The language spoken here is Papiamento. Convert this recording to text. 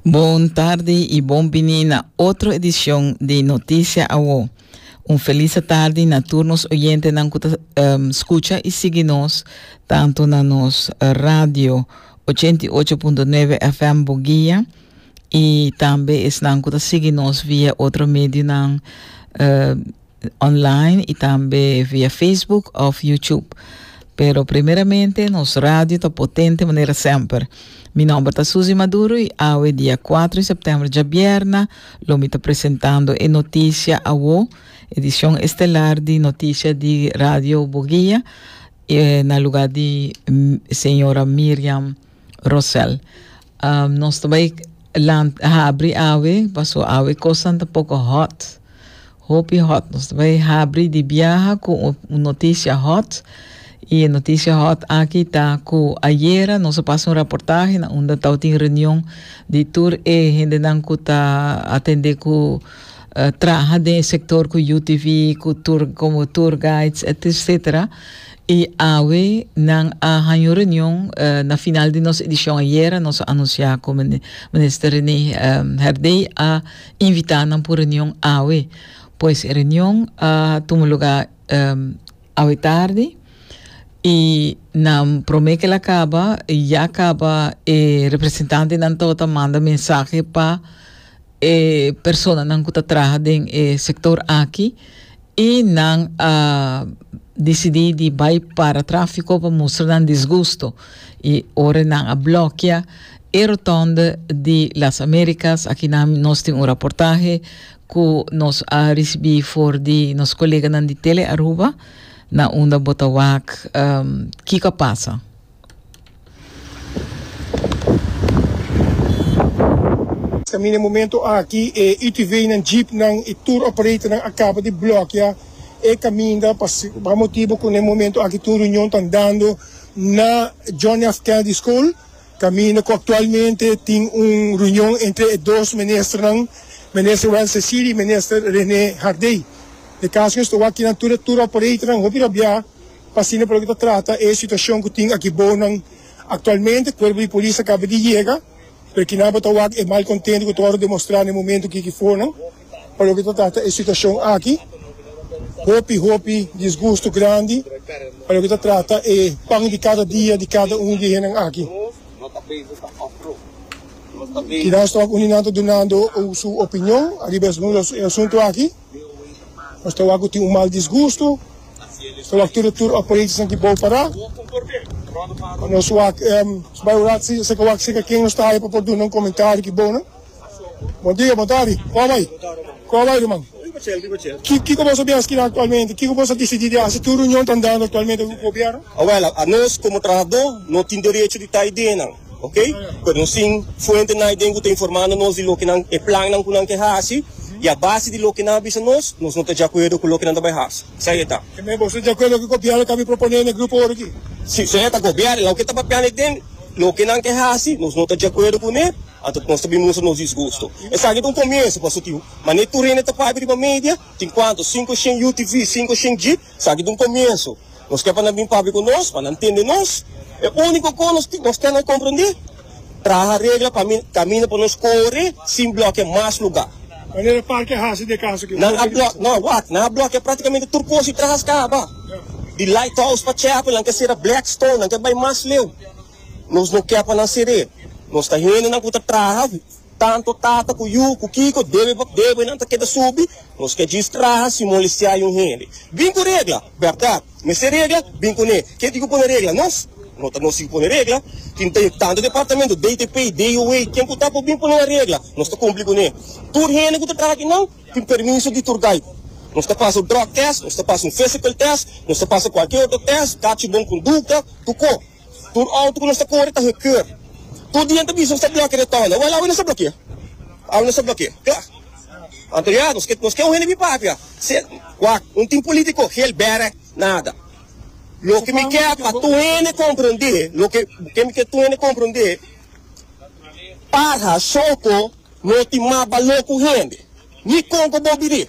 Bon tardi y bon bini na otro edicion di Noticia Awo. Un felisa tardi na tur nos oyentenan cu ta um, scucha y sigui nos tanto na nos radio 88.9 FM Boguia y tambe esnan cu ta sigui nos via otro medionan, uh, online y tambe via Facebook of YouTube. Pero primeramente nos radio ta potente manera semper. Mi nomber ta Susie Maduro y awe dia 4 de september djabierna lo mi ta presentando e noticia awo, edicion estelar di noticia di Radio Boguia eh, na lugar di mm, señora Miriam Rosel. Um, nos ta bai lant, habri awe, paso awe cosnan ta poco hot. Hopi hot. Nos ta bai habri di biaha cu un, un noticia hot. Y e noticia hot aki ta cu ayera nos a pasa un reportaje na unda tau tin reunion di tur e hendenan cu ta atende cu eh, traha den e sector cu UTV, cu tour, como tour guides, et cetera. I awe nan a haña un reunion na final di nos edishon ayera. Nos a anunsiá ku Minister Rene Herdey a invitá nan pa un reunion awe. Pues e reunion a tuma lugá awe tardi i nan promé ku el a kaba ya kaba e representantenan tawata manda mensahe pa e personanan ku ta traha den e sektor aki i nan a disidí di bai para tráfiko pa mustra nan disgusto i ora nan a blòkia e rotònde di Las Américas. Aki nan nos tin un raportahe ku nos a risibí for di nos koleganan di Tele Aruba na unda bo ta wak kiko a pasa. Ta mina momento aki e UTVnan, jeepnan i tur operatornan a kaba di blokia e kaminda pa pa motibu ku na e momento aki tur reunion ta andando na John F. Kennedy School kaminda ku aktualmente tin un reunion entre e dos ministernan, Minister Wences Ciri i Minister Rene Hardey. E kaso ku esta wak kinan tur e tur operatornan hopi rabiá. Asina por lo ke ta trata e situashon ku tin aki bounan aktualmente, kuerpo di polis a kaba di yega, pero kinan bo ta wak e malkontentu ku ta wòrdu demostrá na e momentu ki kifonan. Pa lo ke ta trata e situashon aki, hopi hopi disgustu grandi pa lo ke ta trata e pan di kada dia di kada un di hennan aki. Kinan stòk uninan ta dunando su opinion ariba e asuntu aki. Nos ta wak ku tin un mal disgustu, nos ta wak tur i tur operationan di bou pará, pa nos wak bai ora si nos ta wak seka ken nos ta haya pa por duna un komentario ki bounan. Bon dia, bon tardi, kua bai? Kua bai ruman? Ki kiko boso bin askina aktualmente? Kiko boso a disidí di hasi? Tur runion ta andando aktualmente ku gobierno? Awel, a nos komo trahadó no tin derecho di ta idenan. ok por nos tin fuente naiden cu ta informando nos di loke nan e plannan cu nan ke haci y a base di loke nan a bisa nos nos no ta djacuerdo cu loke nan ta bay haci sa e ta. Tambe boso ta djacuerdo cu gobierno ta mi propone n'e grupo ora aki? Si, sa e ta gobierno loke ta papia naiden loke nan ke haci nos no ta djacuerdo cu ne anto nos ta bin mustra nos disgusto esaki ta un comienzo pasobra tin mane tur hende ta papia riba media tin cuanto cinco shen utv cinco shen jeep Esaki ta un komienso. Nos ke pa nan bin papia ku nos, pa nan tende nos. E úniko kos nos tin, nos tene komprendé, traha regla pa mi kaminda pa nos kore sin blòkiá mas lugá. Wanneer e parke hasi den kaso ku e Nan a blòkiá blòk, no, wak, nan a blòkiá praktikamente tur kos i traha skaba. Di Lighthouse pa Chapel nan ke sera Blackstone, nan ke bai mas leu. Nos no ke pa nan ser'é. Nos ta hendenan ku ta traha Tanto tata ku yu ku kiko debe pa bebe nan ta keda subi nos ka djis traha sin molestiá un hende bin ku regla bèrdat mester regla bin ku ne kenti ku pone regla nos no ta nos si ku pone regla tin ta yu tanto departamento DTP y DUA ken ku ta por bin pone nan regla nos ta kumpli ku ne tur hende ku ta traha aki nan tin permiso di tur gai nos ta pasa un drug test nos ta pasa un physical test nos ta pasa kualke otro test kachi bon kondukta tu ko. Tur auto cu nos ta core ta gekeurd. Tur dia n'ta bisa nos ta blokia de tonda. Wel, awe nos ta blokia. Awe nos ta blokia. Cla. Anto ya, nos ke, nos ke un hende bin papia. Se, wak, un tin politico, gel bere, nada. Loke mi ke pa tur hende comprende, loke ke mi ke tur hende comprende, Parha, Soco, no tin mas balor cu hende. Ni con cu bo biri.